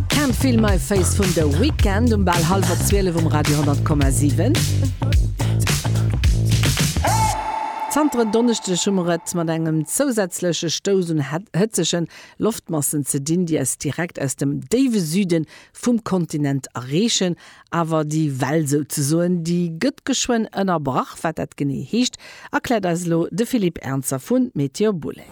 Can't Feel My Face vun The Weeknd um bal hallwer 12 um Radio 100,7. Zanter en Donneschdeg hu mer et mat engem zousätzleche Stouss un hëtzege Loftmassen ze dinn, déi eis direkt aus dem déiwe Süde vum Kontinent erreechen. Awer déi Well souzesoen, déi gëtt geschwënn ënnerbrach. Wat dat genee heescht, erkläert eis elo de Philippe Ernzer vu Météo Boulèze.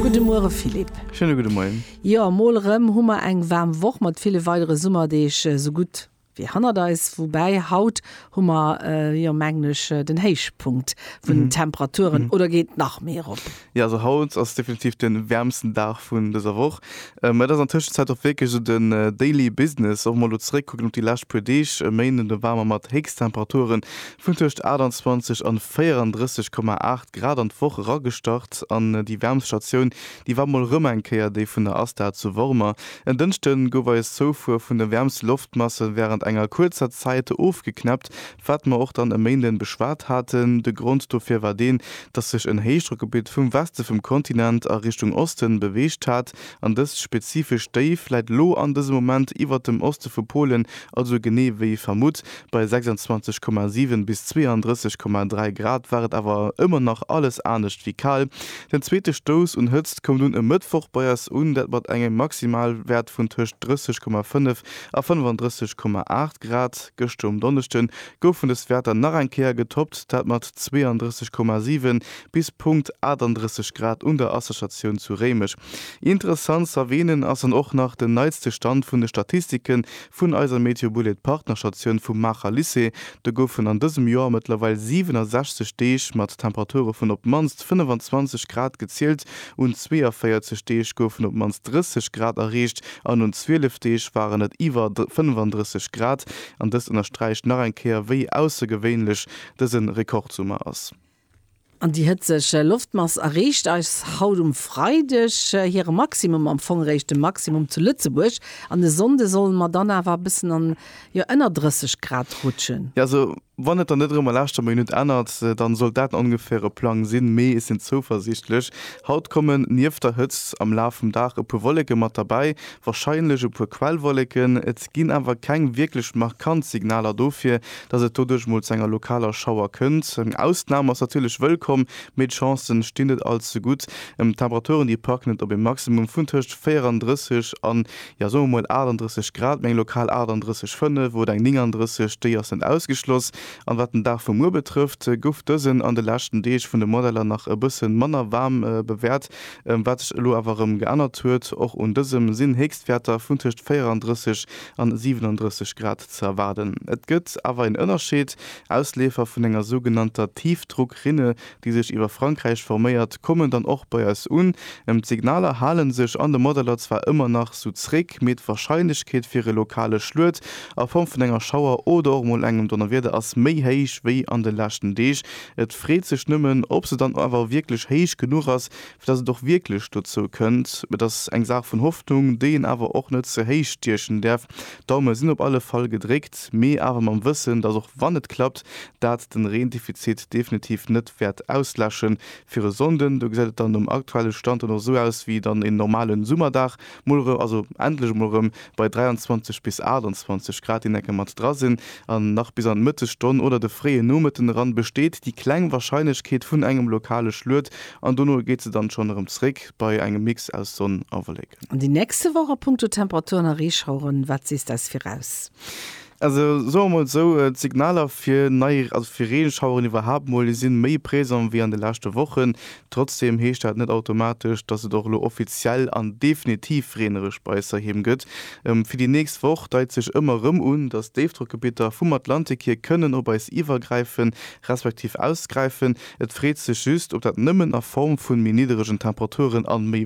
Gudde Muere Philippe. Schéine gudde Moien. Jo, mol erëm hu mer eng waarm Woch mat ville weidere Summerdeeg esou gutt wéi hannert eis. Woubäi haut hu mer jo, mengen ech, den Héichpunkt vun den Temperaturen. Oder geet nach méi erop? Jo, also haut ass definitiv den wäermsten Dag vun dëser Woch. Et ass an Tëschenzäit och wierklech esou den Daily Business, och mol elo zeréckkucken op déi lescht puer Deeg. E Méinden war mer mat Héchsttemperature vun tëscht 28 an 34,8 Grad an d'Woch eragestart an déi wäermst Statioun, déi war mol erëm eng Kéier déi vun der ASTA zu Wormer. En Dënschde gouf eis Zoufuer vun de wäermste Loftmasse wärend enger kuerzer Zäit ofgeknäppt. Wat mer och dann e Méinden beschwat haten, de Grond dofir war deen, dass sech en Héichdrockgebitt vum Weste vum Kontinent a Richtung Osten beweegt hat, an dëst spezifescht Déif läit lo an dësem Moment iwwert dem Oste vu Polen, also genee wéi vermutt bei 26,7 bis 32,3 Grad war et awer ëmmer nach alles anescht wéi kal. Den zweete Stouss un Hëtzt koum dunn e Mëttwoch bei eis un, dat mat engem Maximalwäert vun tëscht 30,5 a 35,8 Grad. Gëschter um Donneschde goufen dës Wäerter nach eng Kéier getoppt, dat mat 32,7 bis Punkt 38 Grad un der Asserstatioun zu Réimech. Interessant z'erwähnen ass dann och nach den neitste Stand vun de Statistiken vun eiser Meteobullet Partnerstatioun vum Maacher Lycée. Do goufen an dësem Joer mëttlerweil 67 Deeg mat Temperature vun op d'mannst 25 Grad gezielt. Un 42 Deeg goufen op d'mannst 30 Grad erreecht an un 12 Deeg waren et iwwer 35 Grad. An dëst ënnersträicht nach eng Kéier, wéi aussergewéinlech dëse Rekordsummer ass. An déi hëtzeg Loftmass erreecht eis haut um Freideg hire Maximum, am Fong eréischt de Maximum zu Lëtzebuerg an e Sonnde solle mer dann awer e bëssen an Jo ënner 30 Grad rutschen. Jo also wann et dann net erëm a laaschter Minutt ännert, dann sollt dat en ongeféiere Plang sinn, mee ech sinn zouversiichtlech. Haut kommen nieft der Hëtzt am Laf vum Dag e puer Wolleke mat derbäi, warscheinlech e puer Quellwolleken. Et ginn awer keng wierklech markant Signaler dofir, dass et doduerch mol zu enger lokaler Schauer kënnt. Eng Ausnam ass natierlech wëllkomm, mee d'Chancen stinn net all ze gutt. D'Temperaturen déi packen et op e Maximum vun tëscht 34 an jo soe mer mol 38 Grad, meng lokal 38 5 oder eng 39, déi ass net ausgeschloss. An wat den Dag vu muer betrëfft, gouf dësen an de leschten Deeg vun de Modeller nach e bësse manner waarm bewäert, wat sech elo awer erëm geännert huet. Och un dësem sinn Héchstwäerter vun tëscht 34 an 37 Grad ze erwaarden. Et gëtt awer een Ënnerscheed, Ausleefer vun enger sougenannter Tiefdruckrinne déi sech iwwer Frankräich forméiert, kommen dann och bei eis un. D'Signaler hale sech an de Modeller zwar ëmmer nach sou zréck, mee d'Warscheinlechkeet fir e lokale Schluet a Form vun enger Schauer oder och mol engem Donnerwieder ass méi héich wéi an de leschten Deeg. Et freet sech nëmmen, ob se dann awer wierklech héich genuch ass, fir datt et och wierklech dozou kënnt. Et ass eng Saach vun Hoffnung, déi een awer och net ze héich stiechen däerf. D'Daume sinn op alle Fall gedréckt, mee awer mam Wëssen, datt och wann et klappt, dat den Reendefizit definitiv net wäert ausläschen fir e Sonnden. Do gesäit et dann nom aktuelle Stand dann och esou aus wéi dann en normalen Summerdag, mol erëm, also endlech emol erëm bei 23 bis 28 Grad, déi enke mat dra sinn. An nach bis an d'Mëttesstonn oder de fréie Nomëtten eran besteet déi kleng Warscheinlechkeet vun engem lokale Schluet an dono geet se dann schonn erëm zréck bei engem Mix aus Sonn a Wolleken. An déi nächste Woch a punkto Temperaturen a Reeschaueren, wat sees des viraus? Also soe mer mol esou, d'Signaler fir nei, also fir Reegeschaueren iwwerhaapt mol, déi si méi présent wéi an de leschte Wochen. Trotzdeem heescht dat net automatesch, dass et och elo offiziell an definitiv reenereg bei eis heiheem gëtt. Fir déi nächst Woch deit sech ëmmer erëm un, dass Déifdrockgebitter vum Atlantik hier kënnen op eis iwwergräifen, respektiv ausgräifen. Et freet sech just, ob dat nëmmen a Form vun méi nidderegen Temperaturen an méi.